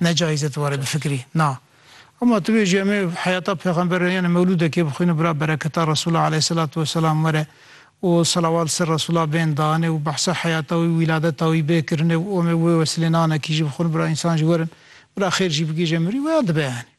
Ne cayîz e tu warê bifikirî. Na. Hema tu bêjî em ê heyata pêxember re yanê mewlûdekê bixwîne bira bereketa Resûla aleyhîselatu weselam were û selawat li ser Resûla bên danê û behsa heyata wî û wîladeta wî bê kirine û em ê wê wesilê nanekî jî bixwin bira însan jî werin bira xêr jî bigihîje mirî weya dibe yanî.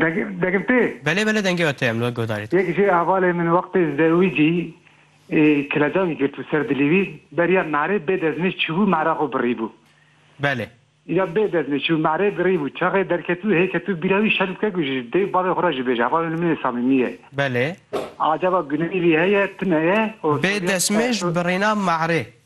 Dengê, dengê tê? Belê belê dengê we tê em li we guhdarî dikin. Yek jê hevalê min wextê zewî cî kilecavî girtbû ser dilê wî beriya merê bê dezmêj çûbû mere xwe birîbû. Belê. Îra bê dezmêj çûbû merê birîbû çaxê derketbû hê ketbû bîra wî şerm bike ku ji dêw bavê xwe re jî bêje hevalê min ê samîmî ye. Belê. Acaba guneyî vî heye tune ye? Bê dezmêj birîna merê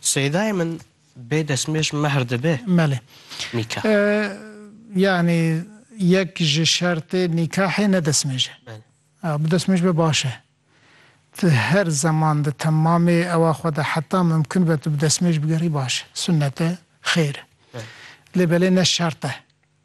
Seydayê min bê destmêj mehr dibe? Belê. Nîkah. Yanî yek ji şertê nîkahê ne destmêj e. Belê. A, bi destmêj be baş e. Ti her zeman di temamê ewa xwe de heta mimkun be tu bi destmêj bigerî baş e. Sunnet e, xêr e. Belê. Lê belê ne şert e.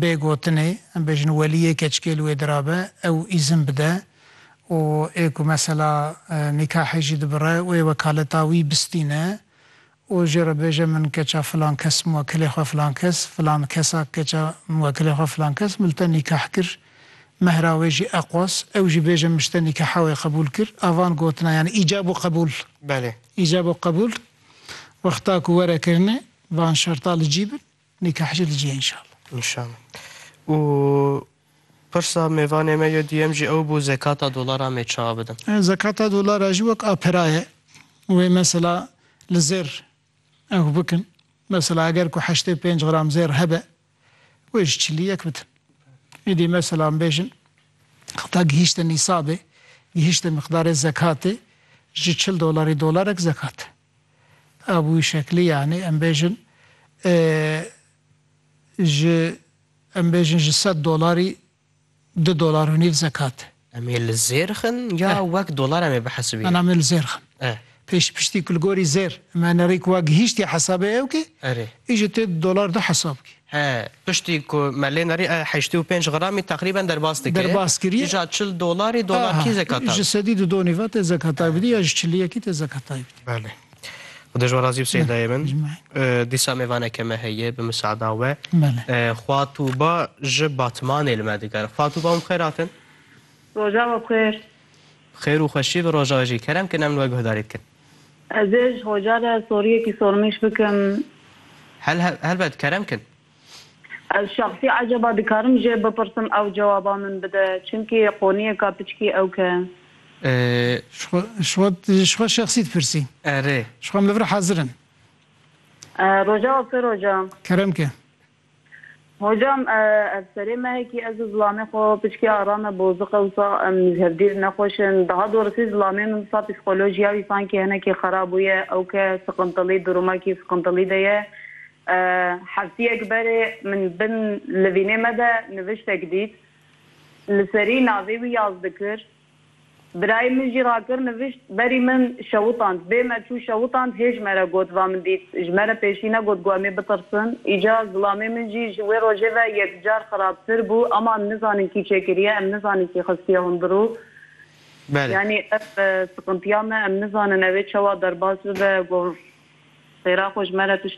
Bê gotinê, em bêjin welî yê keçikê li wê dirabe, ew îzin bide û ê ku mesela nîkahê jî dibire wê wekaleta wî bistîne û jê re bêje min keça filan kes muwekilê xwe filan kes, filan kesa keça muwekilê xwe filan kes mil te nîkah kir, mehra wê jî eqos, ew jî bêje min ji te nîkaha wê qebûl kir. A van gotina yanî îcab û qebûl. Belê. Îcab û qebûl wexta ku were kirine van şerta li cî bin. Nîkah jî dicî înşallah. Înşallah. Û pirsa mêvanê me ya duyem jî ew bû zekata dolaran mê çawa bidim? Zekata dolara jî wek a pira ye. Wê mesela li zêr ew bikin. Mesela eger ku heştê û pênc gram zêr hebe wê ji çilî yek bidin. Îdî mesela em bêjin heta gihîşte nîsabê, gihîşte miqdarê zekatê ji çil dolarî dolarek zekat e. Abû Şeklî yanî em bêjin ji em bêjin ji sed dolarî du dolar û nîv zekat e. Em ê li zêr xin ya wek dolar em ê bihesibînin? Em ê li zêr xin. Pêş piştî ku li gorî zêr em enerî ku wa gihîştî hesabê ewkê, î ji tê du dolar de hesab bikî. He, piştî ku me lê nerî e heştê û pênc gramî teqrîben derbas dike. Derbas kiriye. Kîja çil dolarî, dolar kî zekata? Ji sedî du donî ve tê zekatay bidî ya ji çiliyekî tê zekatay bidî. Belê. Xuda ji we razî bi Seyîdayê min. Dîsa mêvaneke me heye bi misaada we. Xwa Tûba ji Batmanê li me digere. Xwa Tûba hûn bi xêr hatin. Roja we bi xêr. Bi xêr û xweşî bi roja we jî. Kerem kin em li we guhdarî dikin. Ez ê ji xoca re soriyekî sornîş bikim. Hel helbet, kerem kin. Ez şexsî ecaba dikarim jê bipirsim ew cewaba min bide, çimkî qoniyeka piçkî ewk e. Ji xwe ji xwe şexsî dipirsî. Erê. Ji xwe min li vir hazir in. Rojava sê roja. Kerem ke. Hocam ev serê mehekî ez û zilamê xwe piçkê ara me boziq e wisa em ji hevdîr nexweş in. Daha dorisî zilamê min wisa psîkolojiya wî sankî hinekî xera bûye. Ew ke siqintilî durumekî siqintilî de ye. Heftiyek berê min bin livînê me de niviştek dît. Li serî navê wî yaz dikir. Birayê min jî rakir nivîşt, berî min şewitand. Bê me çû şewitand hê ji me re got va min dît. Ji me re pêşî negot ku em ê bitirsin. Îca zilamê min jî ji wê rojê ve yekcar xirabtir bû. Ama em nizanin kî çêkiriye, em nizanin kî xistiye hundirû. Yanî ev siqintiya me em nizanin ew ê çawa derbas bibe. Got xêra xwe ji me re tişt.